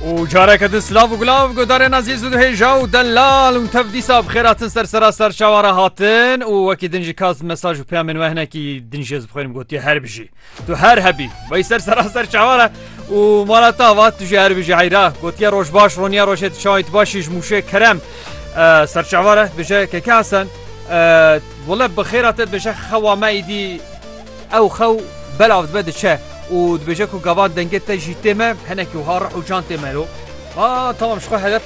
û careke din silav û gulav guhdarên ezîz û dihêja û delal û tev dîsa bi xêratin ser sera serçavan re hatin û wekî din jî kas mesaj û peyamên we hinekî din jê bi xwe re gotiye her bijî tu her hebî wey ser sera serçavan re û mala te ava tu jî her bijî heyra gotiye roj baş roniya rojê tu çawayî tu baş jî ji mûşê kerem serçavan re dibêje keke hesen wele bi xêra te dibêje xewa me îdî Ew xew belav dibe diçe û dibêje ku gavan dengê te jî tê me, hinekî wiha rih û can tê me lo. A tamam ji xwe hedef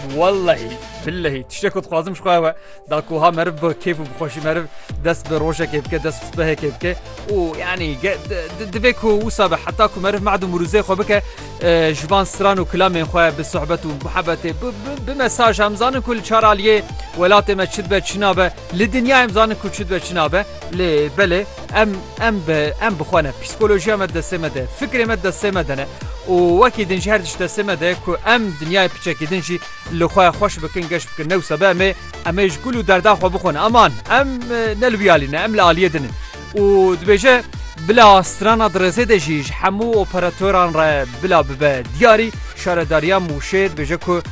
wellehî billehî tiştê ku dixwazim ji xwe ew e da ku wiha meriv bi kêf û bi xweşî meriv dest bi rojekê bike dest bi sibehekê bike û yanî divê ku wisa be heta ku meriv mad û mirûzê xwe bike ji van stran û kilamên xwe bi sohbet û muhebetê bi mesaj em zanin ku li çar aliyê welatê me çi dibe çi nabe li dinyayê em zanin ku çi dibe çi nabe Lê belê em em bi em bi xwe ne psîkolojiya me destê me de fikrê me destê me de ne û wekî din ji her diş destê me de ku em dinyayê piçekî din jî li xwe xweş bikin geş bikin ne wisa be em ê em ê ji gul û derda xwe bixwin aman em ne li wî alî ne em li aliyê din in û dibêje bila strana dirêzê de jî ji hemû operatoran re bila bibe diyarî şaredariya mûşê dibêje ku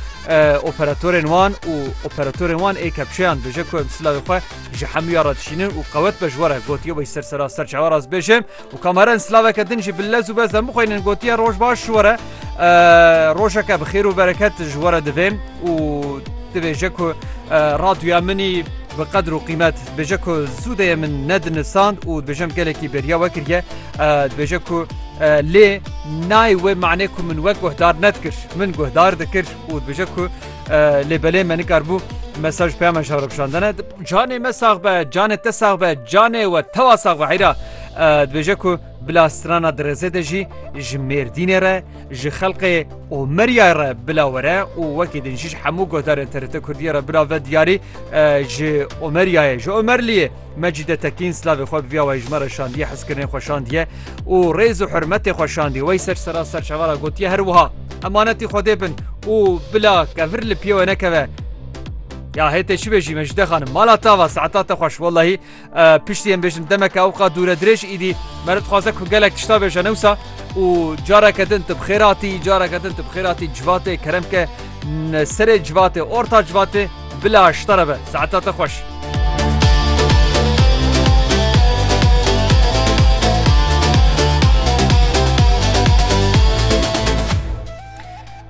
operatorên wan û operatorên wan ê kepçeyan dibêje ku em silavê xwe Ji hemûya re dişînin û qewet be ji we re gotiye wê ser sera ser çawa rast bêje û kameren silaveke din jî bi lez û bezden bixwînin gotiye roj baş ji we re rojeke bi xêr û bereket ji we re divê û dibêje ku raduya minî bi qedir û qîmet dibêje ku zûdeyê min nedinisand û dibêjem gelekî beriya we kiriye dibêje ku lê nayê wê manê ku min wek guhdar nedkir min guhdar dikir û dibêje ku Lê belê me nikarbû mesaj peyama şer bişandene canê me sax be canê te sax be canê we tewa sax be heyra dibêje ku bila strana dirêzê de jî ji mêrdînê re ji xelqê û meryay re bila were û wekî din jî hemû godarên TRT Kurdiye re bila ve diyarî ji Omeriyayê ji Omerliyê Mecîde Tekîn silavê xwe bi vîya wayîjmare şandiye, hizkirinê xwe şandiye û rêz û hurmetê xwe şandiye. Wey ser sera serçava ra gotiye her wiha, Emanetî Xwedê bin û bila kevir li piyê we nekeve. Ya hê tê çi bêjî Mecîde xanim, mala te ava, saeta te xweş. Wellahî piştî em bêjin demeke ewqa dûre dirêj îdî me li dixwaze ku gelek tişta bêje ne wisa û careke din tu bi xêr hatî, careke din tu bi xêr hatî civatê kerem ke serê civatê, orta civatê. Bila aşta re be. Saeta te xweş.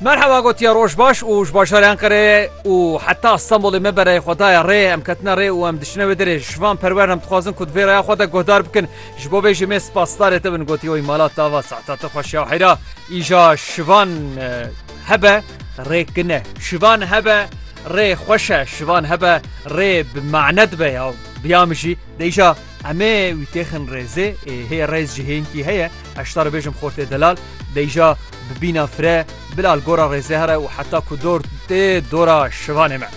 Merhaba gotiya roj baş û ji bajarê Enqereyê û heta Stenbolê me bereyê xwe daye rê em ketine rê û em diçine wê derê ji van perwer em dixwazin ku di vê raya xwe de guhdar bikin ji bo vê jî mêr spasdarê te bin gotî oy mala tava saeta te xweş ya heyra îja şivan hebe rê kine şivan hebe rê xweşe şivan hebe rê bi mane dibe ya biya min jî deyşa emê wî têxin rêzê ê hê rêz ji hênkî heye eşta re bêjim xortê delal deyşa bi bîna fire bilal gora rêzê here û heta ku dor tê dora şivanê me.